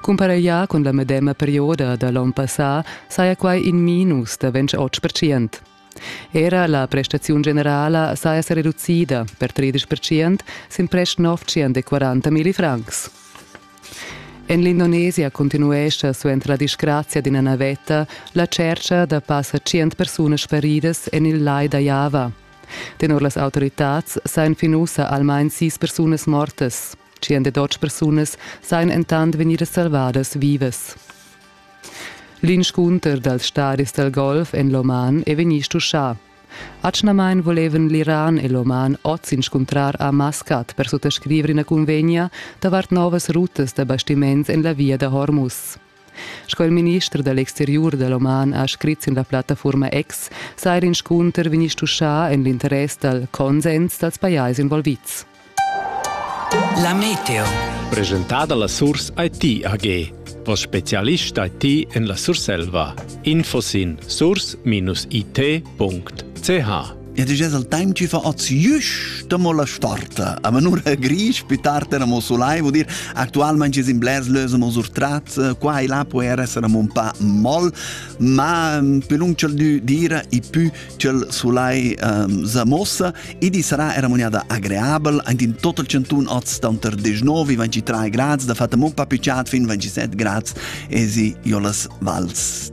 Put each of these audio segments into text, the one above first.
Cumpareglià cun la medema perioda da l'onn passà saja quai in minus da 28 percent. Era la prestaziun generala saja sa reducida per 30 percent sin prest 940.000 francs. En l'Indonesia continuescha suenter la disgrazia d'ina navetta la tschercha da passa 100 persunas feridas en il lai da Java. Tenor las autoritads sajan fin ussa almain sis persunas mortas. 102 persunas sajan entant vegnidas salvadas vivas. L'inscunter dals stadis dal golf en l'Oman è vegnì stuschà. Atgnamain volevan l'Iran e l'Oman oz inscuntrar a Maskat per suttascriver ina cunvegna davart novas rutas da bastiments en la via da Hormuz. Sco il minister da l'exteriur da l'oman ha scrit sin la plattafurma X, sa er inscunter vegnir stuschà en l'interess dal consens dals pajais involvids. La meteo. Presentada la Surs IT AG, voss spezialist IT en la Surselva. Info sin surs-it.ch Ed es al temp chi fa hoz jüsch da mo la storta. A manura grisch, più tard era mo sulai, vuol dir actualmente es in blers lösen mo surtrat, qua e là può er essere un pa moll, ma più lung c'el dü dira e più c'el sulai um, sa mossa, e di sarà era mognada agreabel, ant in total 101 oz tanter 19 e 23 grads, da fatta un pa più chat fin 27 grads, esi iolas vals.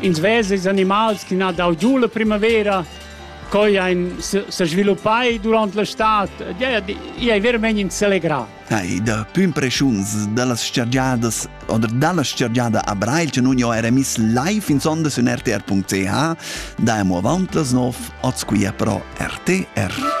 Ins vesa ils animals che han dau giu la primavera, coi ein se sviluppai durant la stad. Ei ei veramein inselegrà. Ei, da più impreschuns dallas stagiadas oder dalla stagiada a Breil, che nun jo era miss live in sonda su rtr.ch, da amo avant las 9, oz qui pro RTR.